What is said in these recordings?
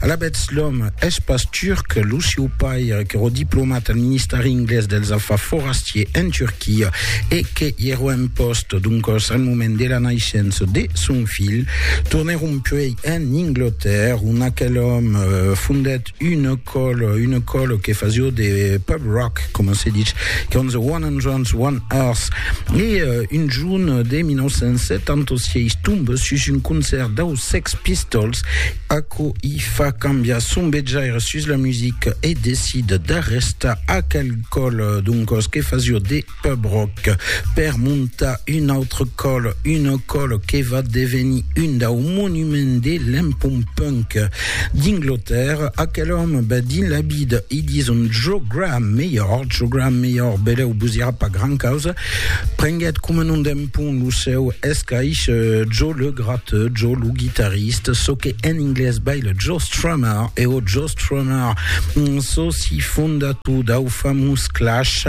Alavetz, l'òm es pas turc, lo sieu pair qu'èra diplomat al Ministèri Inglés dels Afars Forastiers en Turquia e que i èra en pòst doncòs al moment de la naissença de son filh, tornèron puèi en Anglatèrra ont aquel òm fondèt una còla, una còla que fasiá de pub rock, coma se ditz, qu'èran The One Hundreds, One Earth, e un junh de 1976 tomba sus un concèrt dau Sex Pistols, aquò i fa cambiar son vejaire sus la musica e decid d'arrestar aquel còl doncòs que fasió de pub rock per montar un autre còl, un còl que va devenir un dau monuments de l'empont punk d'Inglotèrra. Aquel òme va dins la vida, i dison Joe Graham melhor, Joe Graham melhor, beleu vos irà pas gran causa, Prenguèt coma non d'en pont lo seu escaish Joe le Gratteux, Joe lo guitarriste, çò que en inglés bai le Joe Strummer e o Joe Strummer, soci fondator dau famós Clash,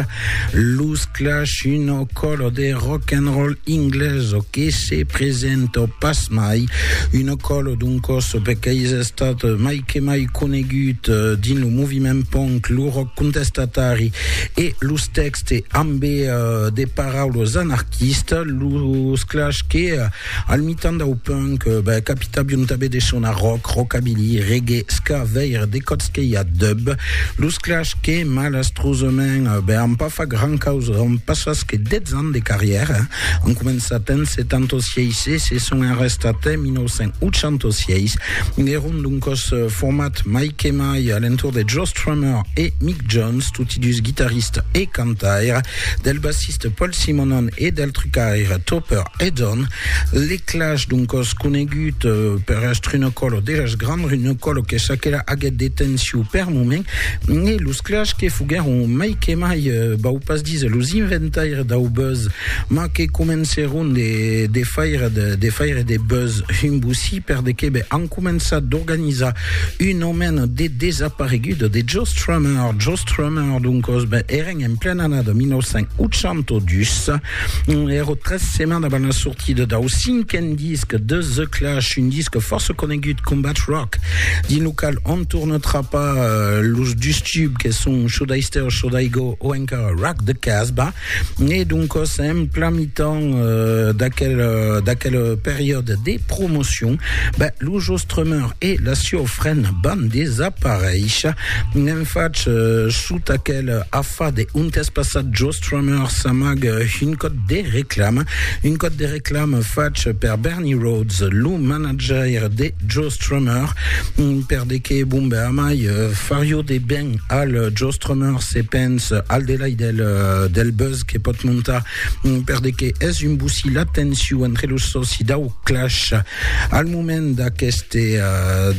los Clash, una còla de rock'n'roll inglesa que se presenta pas mai, una còla doncòs per qu'ais estat mai que mai conegut dins lo moviment punk, lo rock contestatari e los tèxtes. Se ambe de paraules anarquista, los clash que, al mitan dau punk, capitavion tanben de sonar rock, rockabilly, reggae, ska, veire de còps que i a dub, los clash que, malastrosament, an pas fach gran causa dont passas que 10 ans de carrièra, an començat en 76 e se son arrestats en 1986, èron doncòs format mai que mai a l'entorn de Joss. Strummer e Mick Jones, toti dus guitarista e cantaire, del bassista Paul Simonon e del trucaire Topper Headon. Les Clash, d'un còs conegut eh, per èstre una còlo de jazz grand, una còlo que s'aquela aguèt de tensiu per moment, e los Clash que foguèron mai que mai, eh, vau pas díser los inventaires dau buzz, mas que comencèron de faire de faire de buzz un bossí per de qué ben, començat d'organizar un aument de desapareguts de Joe Strummer. Joe Strummer, doncos, ben, eren en plena annada 1982, ero tres setmanes avant la sortida dau cinquen disc de The Clash, un disc força conegut, Combat Rock, dins lo qual on torna trapar eh, los dus tubs que son Should I Stay or Should I Go o encara Rock the Casbah. E doncas, en plan mitan d'aquel periòde de promocion, lo Jostrummer e la sieu frena van desaparéisher. N'en fach, sota aquel afade, ont es passat Jostrummer s'amague un còd de reclama, un còd de reclama fach per Bernie Rhodes, lo manajaire de Jostrummer, perdeque, bon ben, amai, fario de ben al Jostrummer se pens al delai del, del buzz que pot montar per de que es un bocí la tensiu entre los soci dau Clash al moment d'aqueste,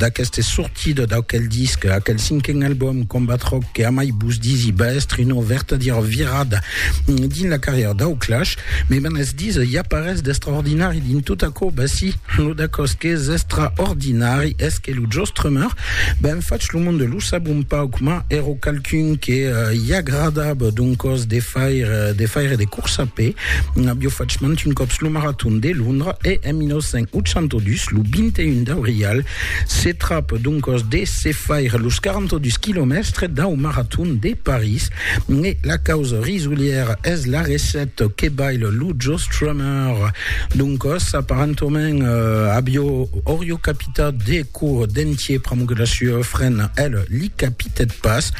d'aqueste sortida d'aquel disc, aquel cinquen album Combat Rock que amai vos disi va èstre una vertadièra virada dins la carrièra dau Clash. Me van es disa, i a parés d'extraordinari dins tot aquò? Ben si, lo d'aquò's qu'es extraordinari es que lo Joe Strummer ben fach lo monde lo sab un pauc, mas èro qualqu'un que i agradava d'un còs de faire de, faire de corsa a pè. N'avió fach mant un còps lo Marathon de Londra e, en 1982, lo 21 d'aurial, se trap d'un còs de se faire los 42 quilomèstres dau Marathon de París. E la causa risolièra es la recèt que baila lo Joe Strummer d'un còs, aparentament, avió, aurió capitat de Cour d'entier pr'amor la sua frena, el li capitèt pas.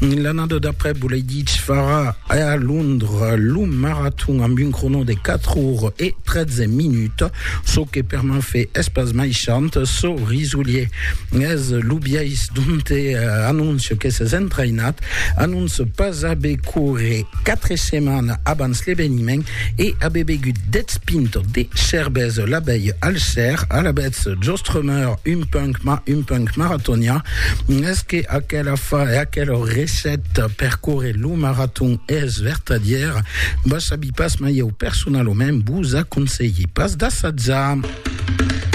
L'annada d'après volèi dich far a Londres lo maraton amb un crono de 4 ores e 13 minuts, çò que per Mafe es pas mai chant, çò risolier es lo biais donte anóncia que s'es entrainat, anóncia pas aver córrer 4 setmanas abans l'eveniment. E abe begut dètz pintes de cervesa, l'abèi al cèr, alavetz jostremèr un punc, mas un punc maratonià. Es que aquela fa e aquela recèta per córrer lo maraton es vertadièra? Ba sabi pas, mas ieu personalament vos aconselhi pas d'assatjar.